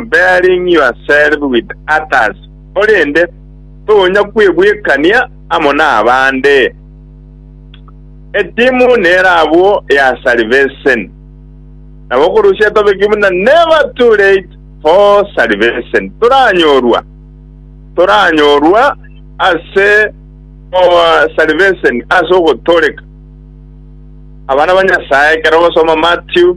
bearing yourself with others, korende tonya kwebwekania amo nabande. Etimu nero abwo ya salvation. Nabo korusia tobeke buna never too late for salvation. Toranyorwa, toranyorwa ase our salvation ase ogotoreka abana ba Nyasae ekero ogosoma Matthew.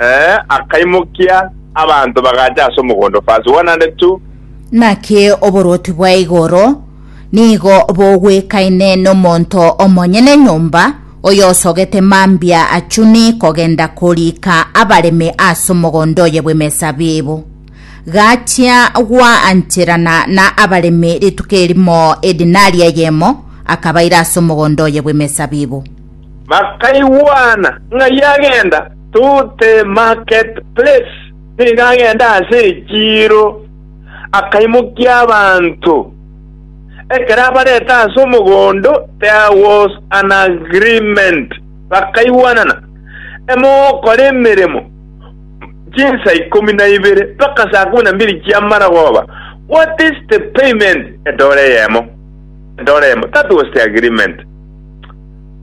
Ee, akaimokia abanto bagacha ase omogondo, verse 102. Naki oborwoti bwa igoro nigo bogwekaine nomonto omonyene nyomba, oyosogete mambia achuni kogenda koriika abaremi ase omogondo oye bw'emesabibu. Gachia goancherana na abaremi rituko erimo edinari eyemo, akabaira ase omogondo oye bw'emesabibu. Bakaigwana ng'a yagenda to the market place, nigo agenda ase echiiro, akaimokia abanto. Ekero abarete ase omogondo there was an agreement, bakaigwanana, emogokora emeremo chinsa ikomi na ibere mpaka saa ikomi na mbiri chi'amaragoba, what is the payment? Edora eyemo, edora eyemo, that was the agreement.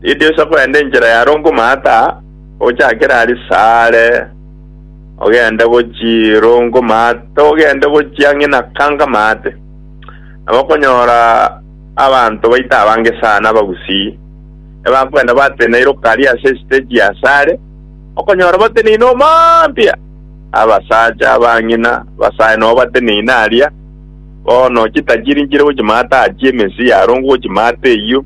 Ridiisa kwenda enchera ya Rongomata, ochakere aria sare, ogende gochia Rongomata, ogende gochia ang'e na Kangamate. Nabo okonyora abanto baito abange sana abagusii, ebakwenda bateneire okaria ase esiteji ya sare, okonyora bateneine omambia, abasacha, abang'ina, abasae nobo bateneine aria, bono chitachiri nchire gochimata aachie emesii ya Rongo gochimata eyio.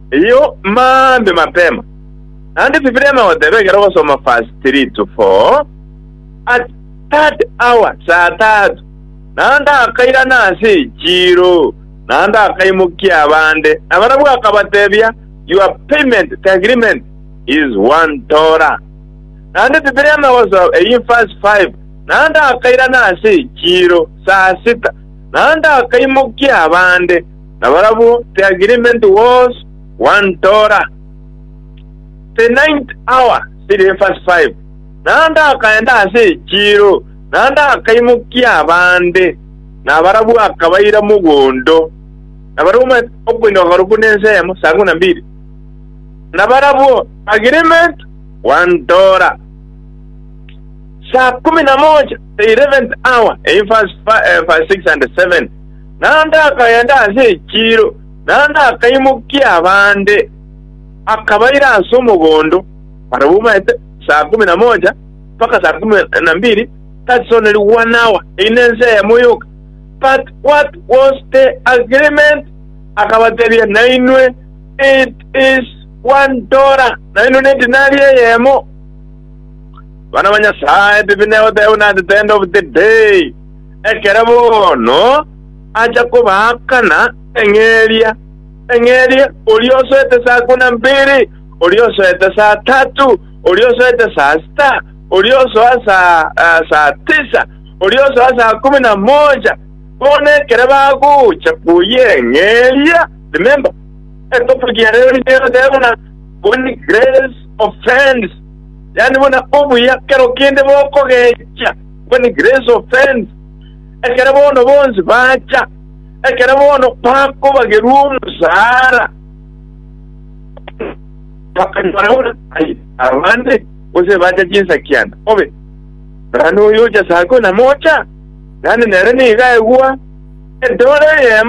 Eyio mambia mapema, naende Bibilia emegoteba ekero ogosoma verse three to four, At third hour, saa tatu, naende akairana ase echiiro, naende akaimokia abande, na barabwo akabatebia, Your payment, the agreement, is one dollar. Naende Bibilia emegosoma eyio verse five, Naende akairana ase echiiro, saa sita, naende akaimokia abande, na barabwo the agreement was one tora. The ninth hour siri verse 5 naende akaenda ase echiiro, naende akaimokia abande, na barabwo akabaira mogondo, na barabwo ma- okoinyoka korokwo nense eyemo, saa kumi na mbili, na barabwo agreement one tora. Saa kumi na moja the eleventh hour in verse, fi- eh, verse 6 and 7 naende akagenda ase echiiro, naende akaimokia abande, akabaira ase omogondo, barabwo omaete saa ikomi na mocha mpaka saa ikomi na mbiri, that is only one hour, eyio nensa eyemo yoka. But what was the agreement? Akabatebia, nainwe it is one dollar, nainwe ne dinari eyemo. Abana ba Nyasae, bibi negoteba buna at the end of the day. Ekero bono acha kobaakana eng'eria, eng'eria, oria osoete saa kumi na mbiri, oria osoete saa tatu, oria osoete saa sita, oria osoa saa tisa, oria osoa saa kumi na moocha. Bono ekero bagocha koyia eng'eria, remember, etopic ya rero nigo egoteba buna when grace offends, yaani buna obuya kero kende bokogecha, when grace offends, ekero bono bonsi bacha, ekero bono bakobagerwa omosaara, bakanyora buna ai abande, gose bacha chinsakiana, obe naende oyocha sako namocha, naende nere nigo aigwa edore eyemo.